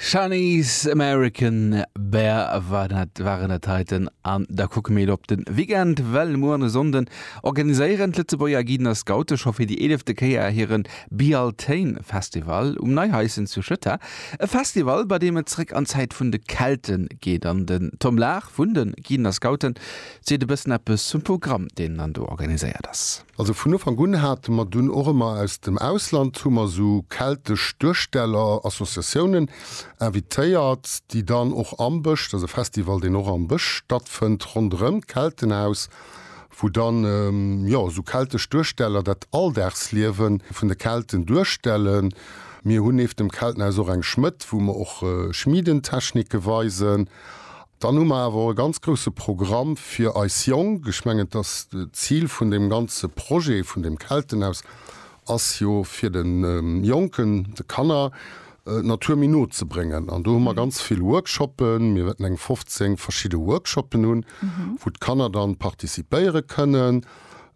Shani's American Bear war dat, waren dat heiten an da kucke mir op den Weekend, well mueren e Sonnden organiséieren d'Lëtzebuerger Guiden a Scoute scho fir déi eelefte Kéier hiren Bealtaine Festival um Neihaischen zu Schëtter. E Festival bei deem et zréck an d'Zäit vun de Kelten geet an den Tom Lahr vun den Guiden a Scouten seet e bëssen eppes zum Programm deen dann do organiséiert ass. Also vun Ufank un hate mer dunn och ëmmer aus dem Ausland hu mer esou keltesch Duersteller, Associatiounen invitéiert, déi dann och am Bësch, dat ass e Festival, deen och am Bësch stattfënnt, ronderëm d'Keltenhaus, wou dann jo esou keltesch Duersteller dat Alldagsliewe vun de Kelten duerstellen. Mir hunn nieft dem Keltenhaus och eng Schmëdd, wou mer och Schmiedentechnike weisen. Dann hu mer awer och e ganz grouse Programm fir eis Jonk. Ech mengen, dass d'Zil vun deem ganze Projet vun deem Keltenhaus ass jo fir de Jonken, de Kanner d'Natur méi no ze bréngen. An do hu mer ganz vill Workshoppen. Mir wäerten eng 15 verschidde Workshoppen hunn, wou d'Kanner dann participéiere kënnen.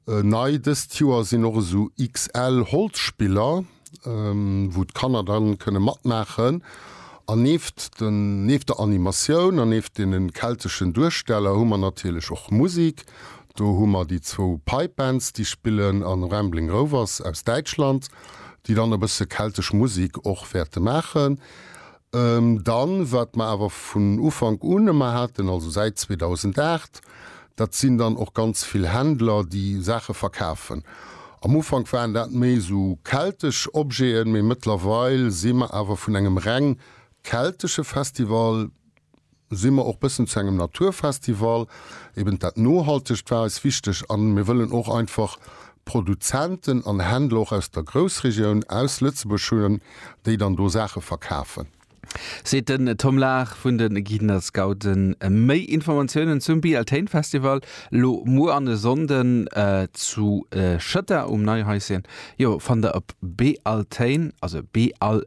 Nei dëst Joer sinn och esou XL Holzspiller, wou d'Kanner dann kënne matmaachen an neeft den neeft der Animatioun an neeft deenen kelteschen Duersteller hu mer natierlech och Musik. Do hu mer déi zwou Pipe Bands déi spillen an Rambling Rovers aus Däitschland déi dann e bësse keltesch Musik och wäerte maachen. Dann, wat mer awer vun Ufank un ëmmer haten, also säit 2008, dat sinn dann och ganz vill Händler, déi Saache verkafen. Am Ufank waren dat méi esou keltesch Objeten, mee mëttlerweil si mer awer vun engem reng keltesche Festival, si mer och bëssen zu engem Naturfestival, eben dat Nohaltegt war eis wichteg a mir wëllen och einfach Produzenten an Händler och aus der Groussregioun, aus Lëtzebuerg hunn, déi dann do Saache verkafen. Seet den Tom Lahr vun de Guiden a Scouten. Méi Informatiounen zum Bealtaine Festival elo muer an e Sonnden zu Schëtter um Neihäuschen, jo, fannt der op bealtaine, also Beal.